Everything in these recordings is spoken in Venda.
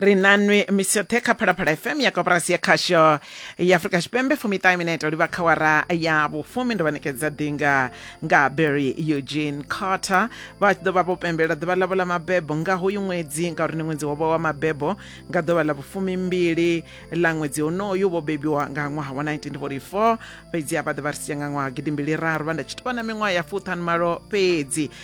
ri nanwi misi yoṱhe kha phalaphala fm ya koporasi ya khasho ya afurika tshipembe fumiṱahe minete livha kha wara ya vhufumi ndo vha ṋekedza ḓinga nga berry eugene carter vha tshi ḓo vha vho pembelela ḓuvha ḽavho ḽa mabebo nga hoyu ṅwedzi ngauri ndi ṅwedzi wovha wa mabebo nga ḓuvha ḽa vhufumi mbili ḽa ṅwedzi honoyu vho bebiwa nga ṅwaha wa 1944 fhedzi a vha ḓe vha ri sia nga ṅwaha gidimbili raru vha nda tshi tou vha na miṅwaha ya fuṱhanu malo fhedzi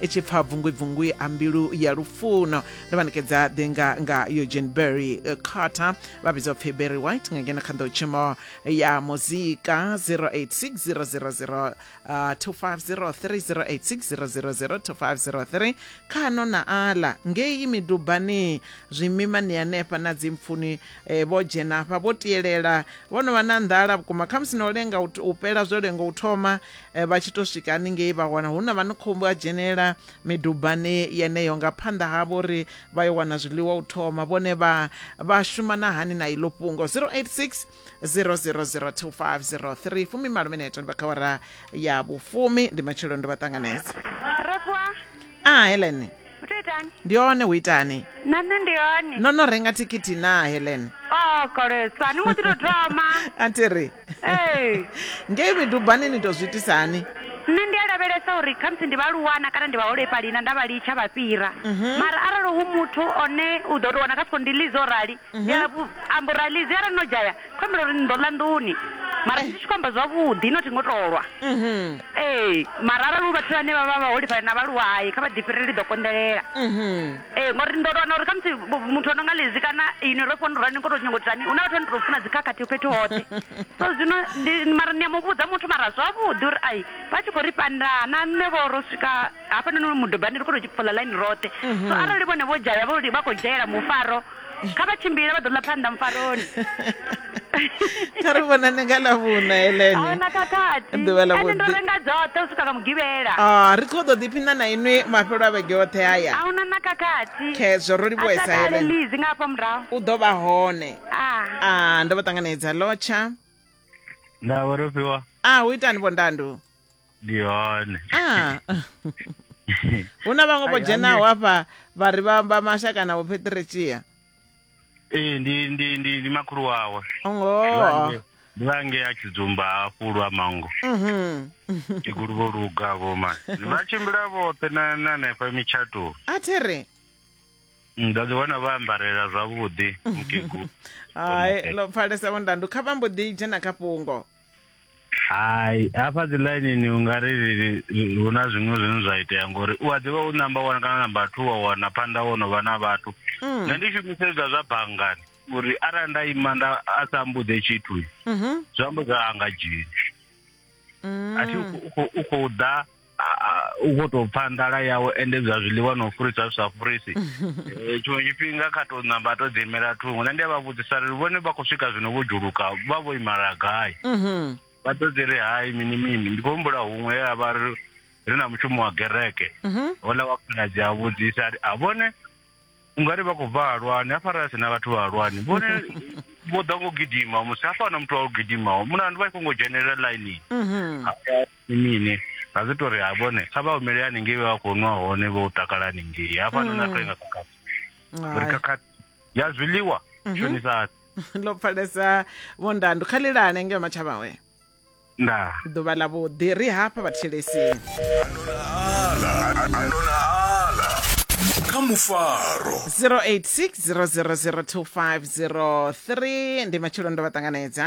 i tshi pfa bvungwibvungwi a mbilu ya lufuno ndo vha nekedza ḓinga nga eugene berry eh, carter vha vhidzwa pfhi berry white nga ngeno kha nḓowtshimo ya muzika 086 0002503 khano na ala ngei midubani zwimima ni hanefha na dzimpfuni eh, vho dzhena hafha vho tielela vho no vha na nḓala vhukuma khamusi na u lenga u t- u pela zwo lenga u thoma Eh, vha tshi to swika haningei vha wana hu na vha ni khombo a dzhenela midubani yeneyo nga phanḓa havho uri vha yo wana zwiḽiwa u thoma vhone vha vha shuma na hani na iḽo fhungo 086 000250 fumi malo mineto ndi vha kha wara ya vhufumi ndi matshelo ndo vha ṱanganedza a ah, helen ndi hone hu itani na nṋe ndi hone no no renga thikhithi na helen o oh, kolesa ni ngo ḓi to thoma a thi ri ee ngei midubani ni tou zwi itisa hani nṋe ndi a lavhelesa uri khamusi ndi vhaaluwana kana ndi vhaholefhali na nda vha litsha vha fhira mhm. mara arali hu muthu one u ḓo tou wana kha siko ndi lizi o rali mhm. ndi amba uri a lizi arali no dzhaya kho ambela uri ni ḓo ḽa nḓuni mara ndi tshi khou amba zwavhuḓi no thi ngo tolwa mhm. ee mara arali u vhathu vhane vha vha vhaholefhali na vhaaluwa hayi kha vha ḓifhirele ndi ḓo konḓelela Ee, ngori ndo wana uri khamusi vhu- muthu o no nga lezi kana ini ro fona rani ngo to nyongo tani hu na vhathu vha no to funa dzikhakhathi fhethu hoṱhe so zwino ndi- mara ni a mu vhudza muthu mara zwavhuḓi uri ai vha tshi khou ri pandana na nṋe vho ro swika hafhanoni mudobani ri khou to fola ḽaini roṱhe so arali vhone vho dzhaya vho li- vha khou dzhaela mufaro kha vha tshimbile vha ḓo ḽa phanḓa mufaroni kha ri vhonane nga ḽa vhuna elene ḓuvha ḽa vhuḓi ndo renga dzoṱhe u swika nga mugivhela ah ri kho ḓo ḓiphina na inwi mafhelo a vhege oṱhe haya a huna na khakhathi khezwo ro livhuesa elene lizi nga hafha murahu u ḓo vha hone ah, ah ndo vha ṱanganedza lotsha na vho rofhiwa ah u itani vho ndandu ndi hone Ah. hu na vhaṅwe vho Ai, dzhenaho hafha vha ri vha vha mashaka na vhopheteretshia ee ndi ndi ndi ndi makhulu wawe ngoho ndi vhange a tshidzumba hafhu lwa mango Mhm. tshigulu vho luga vho ma vha tshimbila vhoṱhe na na hanefha mitshatoni a thi ri nda ḓi wana vha ambarela zwavhuḓi mukegulu hai ḽo pfalesa vhondandu kha vha mbo ḓi dzhena kha fhungo hai hafha dzi ḽainini u nga ri hu na zwiṅwe zwine zwa itea ngori u a ḓivha u namba one kana namba two wa wana phanḓa wo no vha na vhathu mm. nṋe ndi shumisedza zwa banngani uri arali nda ima nda a sa mbuḓe tshithu mhm. zwi amba zwa anga dzheni mm. a thi u khou ḓa u khou tou pfa nḓala yawe ende zwa zwiḽiwa na u furisa zwi sa furisi eh, tshiṅwe tshifhinga kha tou namba to ḓiimela thungo nṋe ndi a vha vhudzisa ri vhone vha khou swika zwino vho dzhuluka vha vho imala gai mhm. vha ḓo dzi ri hai mini mini ndi khou humbula huṅwe ye a vha ri na mushumo wa gereke mhm. hola wa khaladzi a vhudzisa a vhone ungari vha khou bva halwani hafha ra sina vhathu vha halwani vhone vho ḓa ngo gidima musi hafha na muthu wa u gidimaho muna ndi vha i khongo dzhenelela ḽainini mhm. mini ra zwi tori ha vhone kha vha humele haningei vha khou nwa hone vho takala haningei hafha no na mm. toinga khakhathi uri khakhathi ya zwiḽiwa mhm. shonisa lo pfalesa vhondandu kha lilane ngeo matshavhawe ndaa ḓuvha ḽa vhuḓi ri hafha vhathetshelesini kha mufaro 0860002503 ndi matshelo ndo vha ṱanganedza